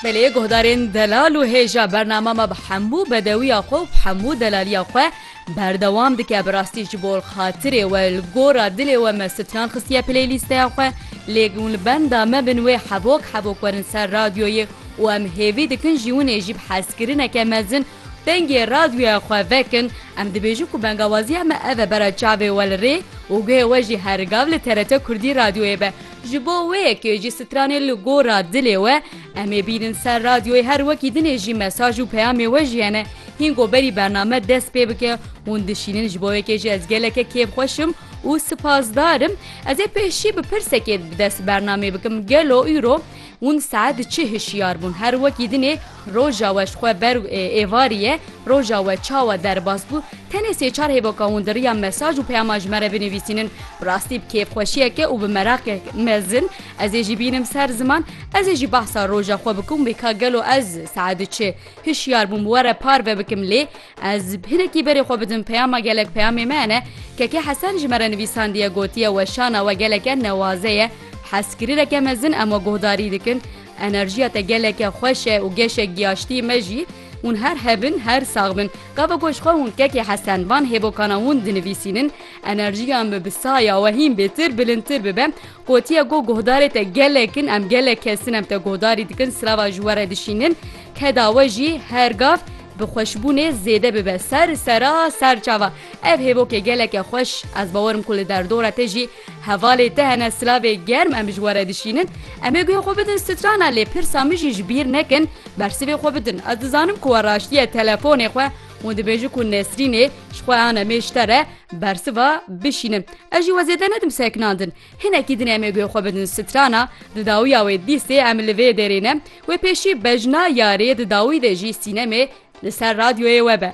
Belê guhdarên delal û hêja bernama me bi hemû bedewiya xwe û bi hemû delaliya xwe berdewam dike bi rastî ji bo xatirê we li gora dilê we me stran xistiye pilê lîsteya xwe lê hûn li benda me bin wê hebok hebok werin ser radyoyê û em hêvî dikin jî winê jî bi hezkirineke mezin dengê radyoya xwe vekin em dibêjin ku bengawaziya me ev e bera çavê we li rê û guhê we jî her gav li TRT Kurdî radyoyê be. Ji bo wê kê jî stranê li gora dilê we, em ê bînin ser radyoyê her wekî dinê jî mesaj û peyamê we jî hene. Hîn ku berî bername dest pê bike, hûn dişînin ji bo wê kê jî ez geleke kêfxweş im û sipasdar im. Ez ê pêşî bi pirsekê bi dest bernamê bikim, gelo îro hûn saet çi hişyar bûn? Her wekî dinê Roja we ji xwe ber û êvarî ye, roja we çawa derbas bû, tenê sê çar hêvoka hûn di riya mesaj û peyama ji me re binivîsînin, bi rastî bi kêfxweşiyeke û bi meraqek mezin ez ê jî bînim ser ziman, ez ê jî behsa roja xwe bikim wê ka gelo ez saet du çi hişyar bûm were parve bikim lê ez hinekî berê xwe bidim peyama gelek peyamê me ne Keke Hesen ji me re nivîsandiye gotiye weşana we geleke newaze ye, hezkirireke mezin em we guhdarî dikin, Enerjiya te geleke xweş e û geşek giyaştî me jî. Hûn her hebin, her sax bin. Gava ku ji xwe hûn kekê Hesen van hêvokana hûn dinivîsînin, enerjiya me bi saya we hîn bêtir, bilindtir bibe. Gotiye ku guhdarê te gelek in, em gelek kes in, em te guhdarî dikin, sirava ji we re dişînin. Keda we jî her gav bi xweşbûnê zêde bibe. Ser sera, ser çava. Ev hêvokê geleke xweş. Ez bawer im ku li derdora te jî Hevalê te hene silavê germ em ji we re dişînin, em ê guhê xwe bidin strana lê pirsa min jî ji bîr nekin bersivê xwe bidin. Ez dizanim ku we raştiye telefonê xwe û dibêjin ku Nesrînê ji xwe an em ê ji te re bersiva bişînin. Ez jî we zêde nedim sekinandin. Hinekî din em ê guhê xwe bidin strana, di dawiya wê dîstê em li vê derê ne, wê pêşî bejna yarê di dawî de jî sînemê li ser radyoyê we be.